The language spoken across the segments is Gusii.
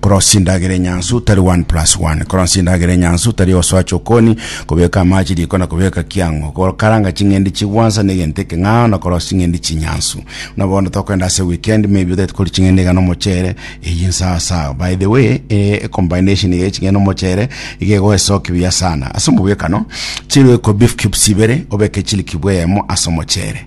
Korwa chindagera enyansu tari one plus one korwa chindagera enyansu tari osoacha okoni kobeka amache riko na kobeka kiang'o gokaranga ching'endi chigwansa na egento ekeng'ao na korwa ching'endi chinyansu na bono tokoenda ase weekend maybe otagete kori ching'endi iga na omochere eyio nsawa sawa by the way eh, combination iga ya ching'endi na omochere iga egoesoki buya sana ase omobwekano chirweko beef cubes ibere obeke chili cube eyemo ase omochere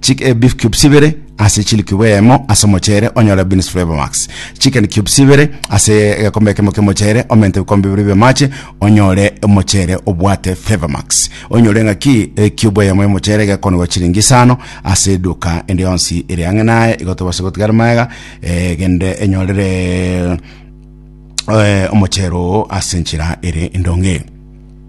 Chick e beef cubes ibere ase chili cube eyemo ase omochere onyore beans flavor max. Chicken cubes ibere ase egekombe ekemo ki'omochere omente ebikombe bibiri bi'amache onyore omochere obwate flavor max. Onyore ng'aki e cube eyemo y'omochere gekonigwa chiringi isano ase eduka ende yonsi ere ang'e naye igo tobase gotigara magega eh, gende enyorere eh, omochere oo ase enchera ere endonge.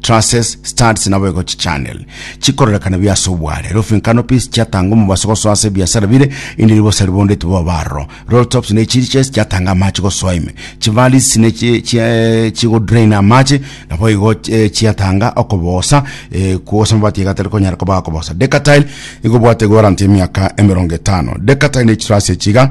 Traces, Stats nabo igo chichannel chikororekana bi ase obware. Roofing canopies chiatanga omobaso gosoa ase ebiasara bire inde ribosa ribondeti bobe aroro. Roll tops na echiriches chiatanga amache gosoa ime. Chivalleys ne chi- chi- eh, chigo drain amache nabo igo eh, chiatanga okobosa eh, ku- ase amabati iga atari konyara koba akobosa. Decatile igobwate warranty emiaka emerongo etano. Decatile ne echirasi echiga